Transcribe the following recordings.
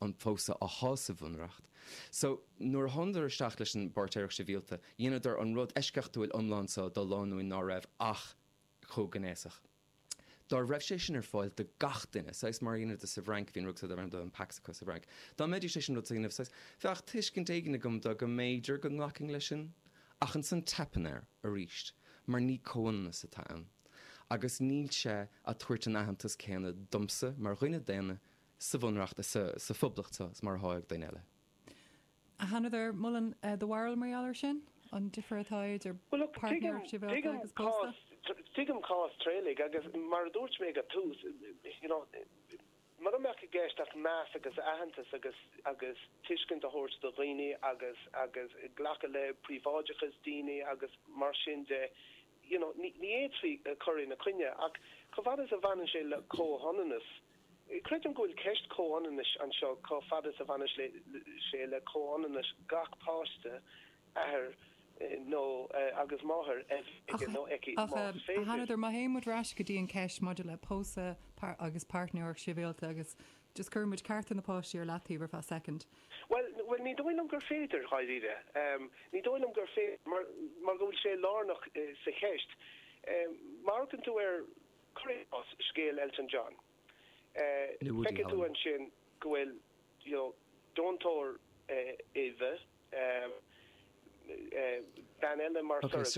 an pósadh á shásamh bhunreacht. So, nuair a thánadar isteach leis an bPáirtéireacht Shibhialta, dheineadar an rud eisceachtúil iomlán seo do lánúin ná raibh ach comhghnéasach. Dá raibh sé sin ar fáil do gach duine, saghas mar a dheineadar sa bhFrainc, bhí an rud seo darb ainm do an Pax acu sa bhFrainc, dá mbeidís chun an rud san a dhéanamh, saghas, bheadh tuiscint éigin agam do go mb'fhéidir go nglacfainn leis sin. Ach ansan teipeann air arís mar ní comhionannas atá ann agus níl sé a' tabhairt an aitheantas céanna domsa mar dhuine daonna sa Bhunreacht is sa Phoblacht seo mar atá ag daoine eile. An athraíonn do bharúil mar gheall air sin? An difear atá idir páirtnéireacht shibhialta agus pósadh? Tuigim cás Thraolaigh agus mar a dúirt mé ag an tús, mura mbeadh i gceist ach meas agus aitheantas agus tuiscint a thabhairt do dhaoine agus glacadh le príobháideachas daoine agus mar sin de, ní fhéadfaí cur ina coinne. Ach chomh fada is a bhaineann sé le comhionannas, Creidim go bhfuil ceist comhionannais anseo, chomh fada is a bhaineas sé le comhionannas gach páiste, athair nó agus máthair a bheith aige nó aici más féidir. Má théann muid ar ais go dtí an ceist maidir le pósadh agus páirtnéireacht shibhialta agus just cuireadh muid cearta na páistí ar leataobh ar feadh soicind. Bhuel, ní dóigh liom gur féidir, dháiríre. Ní dóigh liom gur féidir mar go bhfuil sé lárnach sa cheist. Má amharcann tú ar. ar scéal Elton John. Feicfidh tú ansin go bhfuil deontóir uibhe, bean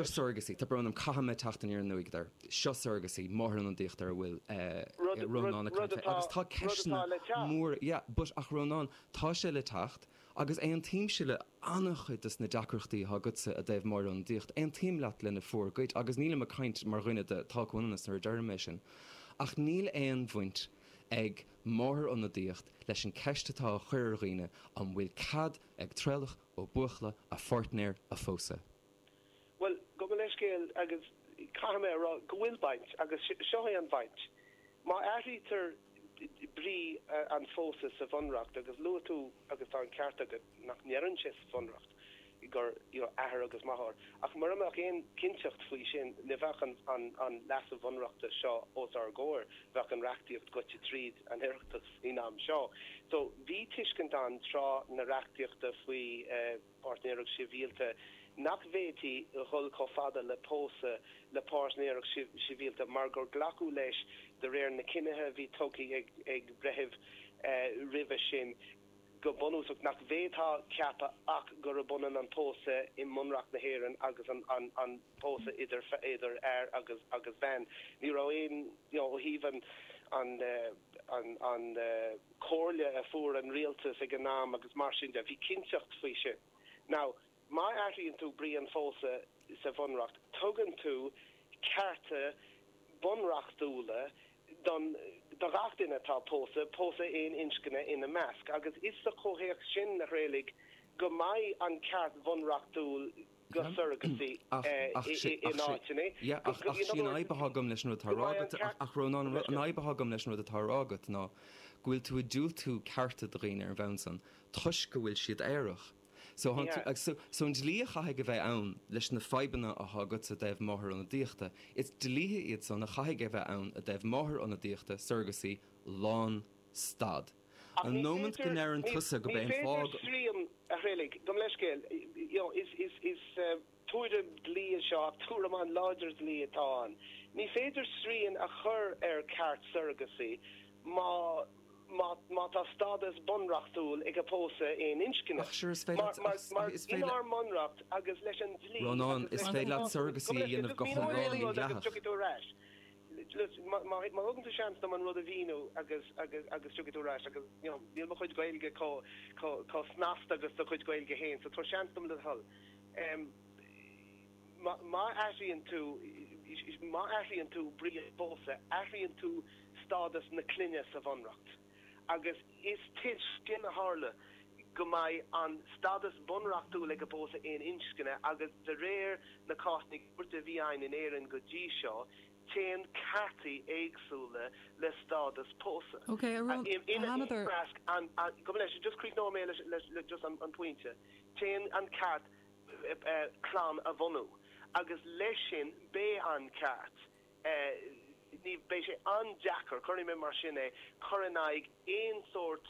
surrogacy. Tá brón orm, caithfidh mé teacht aniar aduaidh ort. Seo surrogacy, máthairionadaíocht ar a bhfuil Rónán ag caint faoi. Agus tá ceisteanna móra, yeah, but, ach Rónán, tá sé le teacht, Agus aontaímse le an-chuid dos na deacrachtaí atá agatsa i dtaobh máthairionadaíocht. Aontaím leat lena bhformhór cuid, agus nílim ag caint mar dhuine de Tá comhionannas nuair a deirim é sin. Ach níl aon bhaint ag máthairionadaíocht leis an ceist atá á cur ar dhaoine, an bhfuil cead ag Traolach Ó Buachalla a pháirtnéir a phósadh? Bhuel, gabh mo leithscéal agus caithfidh mé a rá go bhfuil baint, agus seo é an bhaint. Má athraítear brí an phósta sa Bhunreacht, agus luaigh tú, agus tá an ceart agat, nach ndeireann sé sa Bhunreacht gur athair agus máthair, ach mura mbeadh aon chinnteacht faoi sin ní bheadh an leasú Bhunreachta seo os ár gcomhair, bheadh an reachtaíocht goite tríd an Oireachtas faoin am seo. So, bhí tuiscint ann tráth na reachtaíochta faoi. Páirtnéireacht Shibhialta nach bhféadfaí a dhul chomh fada le pósadh le páirtnéireacht shibhialta mar gur glacadh leis de réir na cinnithe a bhí tugtha ag breithiúna roimhe sin go bunúsach nach bhféadfá a cheapadh ach gurb ionann an pósadh i mBunreacht na hÉireann agus an pósadh idir fhear agus bhean. Ní raibh aon, ó thaobh an. comhairle a fuair an rialtas ag an am agus mar sin de, ní bhí cinnteacht faoi sin. Now, má athraíonn tú brí an phósadh sa bhunreacht, tugann tú cearta bunreachtúla don, do ghach duine atá pósadh, pósadh aon inscne ina measc, agus is sa chomhthéacs sin a tharlóidh go mbeidh an ceart bunreachtúil, go surrogacy in áiteanna. Yeah, ach, ach sí an fhadhb atá agam leis an rud atá a rá agat, ach, ach Rónán, an fhadhb atá agam leis an rud atá a rá agat ná go bhfuil tú ag diúltú cearta do dhaoine ar an bhonn san toisc go bhfuil siad aerach. So, so an dlí a chaithfidh a bheith ann leis na fadhbanna atá agatsa i dtaobh máthair-ionadaíochta, is dlíthe iad san a chaithfidh a bheith ann i dtaobh máthair-ionadaíochta, surrogacy, lán stad. An nómant go ndeireann tusa gurb é an fáth go. Gabh mo leithscéal. Is tuairim dlí é seo ach tuairim an-láidir dlí atá ann. Ní féidir srian a chur ar ceart surrogacy má tá stádas bunreachtúil ag an bpósadh aon inscne. Ach sure is féidir leat Mar is féidir leat. inár mbunreacht agus leis an dlí Rónán, is féidir leat surrogacy a dhéanamh go hiomlán inghlactha. Má thugann tú seans dom an rud a mhíniú agus agus tiocfaidh tú ar ais agus you know níl mo chuid Gaeilge chomh snasta le do chuid Gaeilge féin so tabhair seans dom le do thoil. Má athraíonn tú má athraíonn tú brí an phósta, athraíonn tú stádas na clainne sa bhunreacht. agus is toisc sin a tharlóidh go mbeidh an stádas bunreachtúil ag an bpósadh aon inscne agus de réir na cásanna cúirte a bhí ann in Éirinn go dtí seo téann cearta éagsúla le stádas pósadh ina measc téann an ceart clann a bhunú agus leis sin beidh an ceart Beidh sé an-deacair, cuirfidh mé mar sin é, cur in aghaidh aon sórt